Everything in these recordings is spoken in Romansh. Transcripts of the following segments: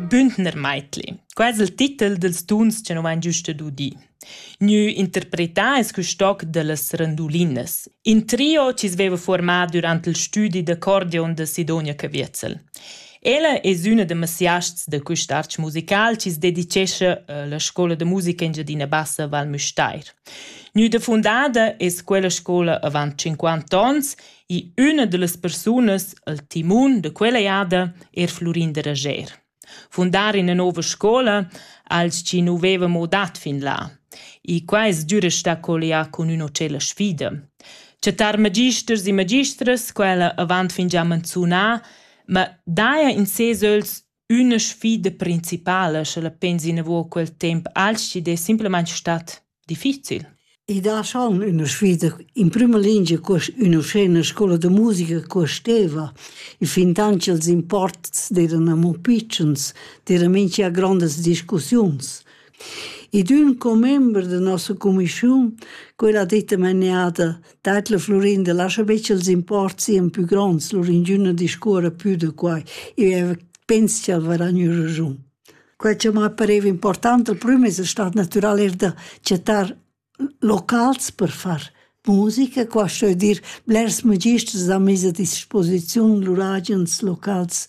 Bündner Meitli, quai es il titel dels tuns cha nu vain giust udì. Gnü interpretà es quist toc da las randulinas, in trio chi sveva formà durant il stüdi d'accordeon da Sidonia Caviezel. Ella es üna da masiasts da quist arch musical chi s dedichescha a la scoula da musica Engiadina Bassa Val Müstair. Gnüda fundada es quella scoula avant 50 ons I üna da las persunas, il timun da quella jada, er Flurin da Rager. Fundar ina nova scola als chi nu veva mo dat fin là. E qua es düra sta collià cun üna cella sfida. Chattar magisters e magistras, quella avant fin già manzunà, ma daja in ses öls Üna sfida principala, sche la pens inavo quel temp alch chi'd es simplamaing stat difficil? I dà schon üna sfida. In prüma lingia cuost ün'uschena scoula da musica cuosteva i fintant cha'ls imports d'eiran amo pitschens, d'eira mincha grondas discussiuns. ed ün commember da nossa cumischiun, quella detta meneada, dat la Florin da lascha betg els imports sien pü gronds, Florindüna discuorra pü da quai. Eu pens ch'el varà gnü ragiun. Quai cha m'ha pareva important al prüm es stat natüral eir da chattar locals per far musica, qua sto eu dir blers magisters han mis a disposiziun lur agens locals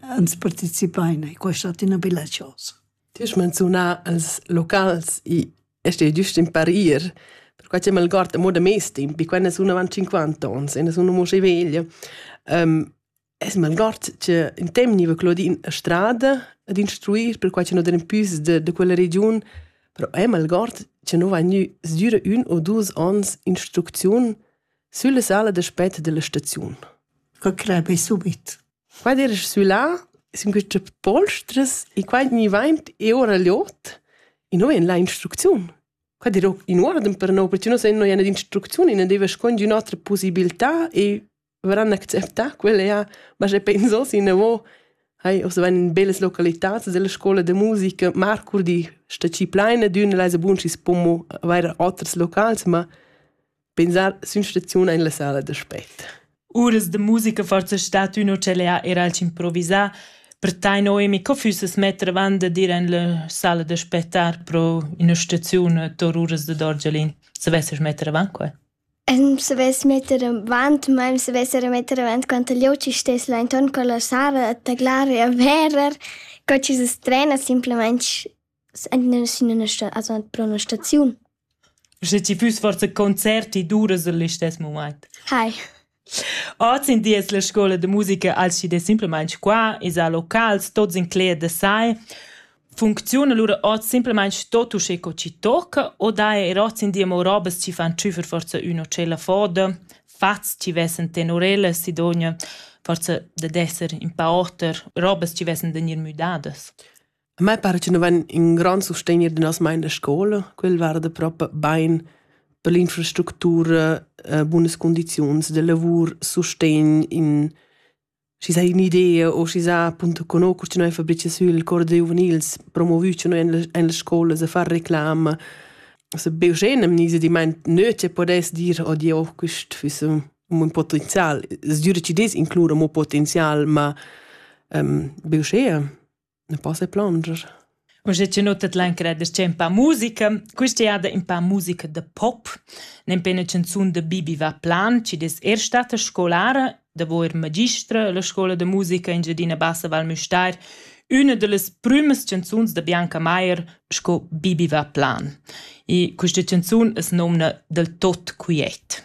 ans participain e questa è ina bella cosa. Ti hai menziunà els locals e este giust in parir perquai che mal guarda mo da mes temp, quando sono avanti 50 ans, e sono mo veglia. Um, es mal guard che in temp niva Claudine a strada ad instruir per quai che non den pius de, de quella region, però è mal guard che non va gnü sdüre un o dus ans instrucziun sulla sala d'aspett della stazione. Concrete subito. Qua d'eira sü là sun quistas polstras e qua gnivaint e ora l'ot e no vain là instrucziun. Qua dirò in uorden per no, perche no sen no ina d'instrucziun e na deva scuond ün'otra pusibiltà e varan acceptà quella ja, ma sche penso inavo hai ossa vain in bellas localitats della scoula da musica. Marcurdi sta schi plaina d'ün, el esa bun schi's po mo avair oters locals, ma Pensar sin staziun en la sala d'aspect. Uras de musica forza stat ün ucellea era al improvisar, per tai Noemi, co füsses metter avant de dir en la sala d'aspettar pro ina staziun tor uras de Dorgelin? Se vesses metter avant quel? Ähm, se ves metter avant, ma se vesser metter avant quant gli oci stess là intorno con la sala a taglare e verer, co ci se strena, semplicemente pro üna staziun. Sche ti füss forsa concert, ti duras il listess mumaint. Hai. Oz in di es la scoula da musica alschi simplamaing qua, esa a locals, tots incleger da sai. Funcziun alura hoz simplamaing tot uschè co chi tocca o daja eir hoz in di amo robas chi fan tschüfer forsa ün o tschella foda, fats chi vessen tenorella, sidogna forsa dad esser in pa oter, robas chi vessen da gnir müdadas. A me pare che nu vain ün grond sustegner da noss main da scoula. Quel varda propi bain per l'infrastructura, bunas cundiziuns da lavur, sustegn in schi s'ha ün'idea o schi s'ha appunto conosco cha noi fabrichas sül cor da giuvenils, promovü cha noi in las scoulas a far reclama. Also be uschè n'am gnisa dimaint nö che podess dir odie oh quist füss ün bun potenzial. Es dür chi'd es inclura mo potenzial, ma be uschea. Ne poss ei plunger. Uschè che nottet l'anchera da scen pa musica, quista jada in pa musica da pop, nen pe 'na canzun da Bibi va plan, chi des er stata scolara, davo er magistra alla scola da musica in Giadina Bassa Val Müstair, üna da las prümas canzuns da Bianca Maier sco Bibi va plan. E questa canzun es nomna Del tot quiet.